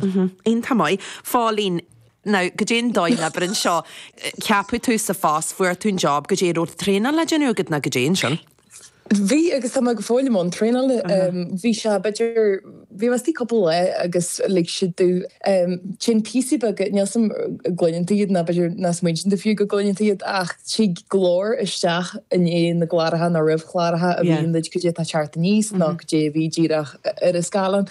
Iontach maith. Phóilín, nó goidé an dóigh leabair anseo, ceapadh tú sa phost, fuair tú an job, goidé an raibh traenáil le déanamh agat nó goidé ansin? Bhí, agus tá mé go fóill i mbun traenála. Bhí sé, b'fhéidir, bhí mé istigh cúpla lá agus like siad tú, téann píosaí beaga, níl a fhios agam an gcluineann tú iad, nó b'fhéidir nach smaoiníonn tú fiú go gcluineann tú iad, ach tig go leor isteach i ndiaidh na gcláracha nó roimh chláracha a insíonn duit goidé atá ag teacht aníos nó goidé a bhí díreach ar an scáileán.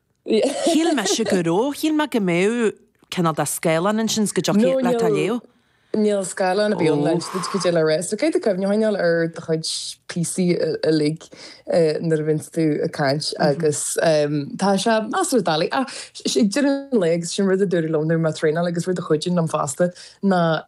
Shíl mise go raibh, shíl mé go mbeadh cineál de scáileán ansin go dtiocfadh leat a léamh. Níl scáileán ar bith ann le hinse duit goidé le rá. So caithfidh tú cuimhne a choinneáil ar do chuid píosaí uilig nuair a bhíonns tú ag caint agus tá sé measartha doiligh ach ag deireadh an lae agus sin rud a dúradh liom nuair a bhí mé ag traenáil agus rud a chuidigh liom fosta ná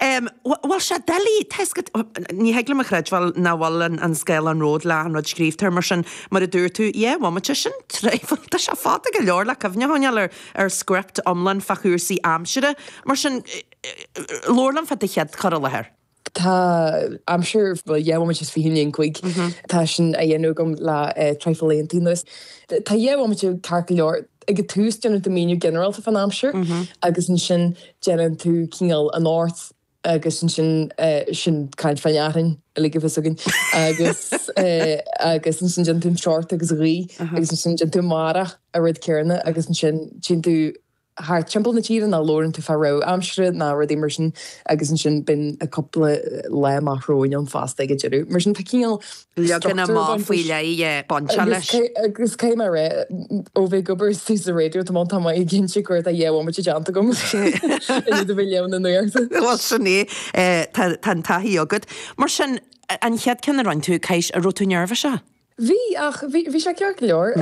Em, bhuel tá sé doiligh, tá's agat. Ní thig liom a chreidbheáil nach bhfuil an scáileán romhat leis an rud scríofa, mar sin, mar a dúirt tú, dhá bhomaite, sin treibheann, tá sé fada go leor le cuimhne a choinneáil ar ar script iomlán fá chúrsaí aimsire, mar sin, labhair liom fá do chéad chur i láthair. Tá aimsir, bhuel, dhá bhomaite is fiche cúig, tá sin á dhéanamh agam le traidhfil laethanta anuas. Tá dhá bhomaite ceart go leor. Ag an tús déanann tú míniú ginearálta fán aimsir agus ansin déanann tú cineál anocht agus ansin sin caint fán fhearthainn uilig a bheas againn agus agus ansin déanann tú an teocht agus an ghaoth agus ansin déanann tú amárach an rud céarna agus ansin téann tú thart timpeall na tíre nó labhrann tú fá rabhadh aimsire nó rudaí mar sin agus ansin bíonn cúpla lá amach romhainn ann fosta ag an deireadh. Mar sin tá cineál Leagan amach faoi leith bainteach leis. Agus cé mar é, ó bheith ag obair istigh sa raidió tá m'anam ag inse go raibh an dá bhomaite déanta agam de thairbhe bheith ag léamh na nuachta. Bhuel sin é, tá an taithí agat. Mar sin, an chéad cheann a rinne tú, ceist, an raibh tú neirbhíseach? Bhí, ach bhí sé ceart go leor.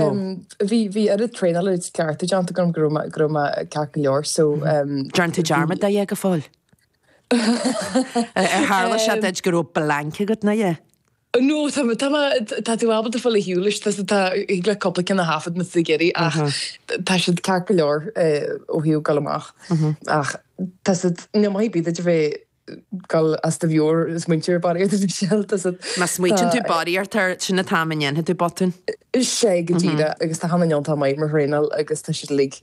Bhí oiread traenála agus cleachtadh déanta agam go raibh mé ceart go leor. An ndearna tú dearmad de a dhath go fóill? Ar tharla sé duit go raibh blanc agat nó a dhath? No, tá mé, tá mé, tá tú ábalta fáil ar shiúl leis, tá, tá, thig leat cúpla ceann a thaifead na suigéirí ach tá siad ceart go leor ó thaobh goil amach. Ach tá siad, níl maith ar bith duit a bheith goil as do mheabhair ag smaointiú barraíocht air na seal, tá siad, Má smaoiteann tú barraíocht air sin an t-am a ndéanfaidh tú botún. sin é go díreach agus tá hana iontach maith mar thraenálaí agus tá siad uilig.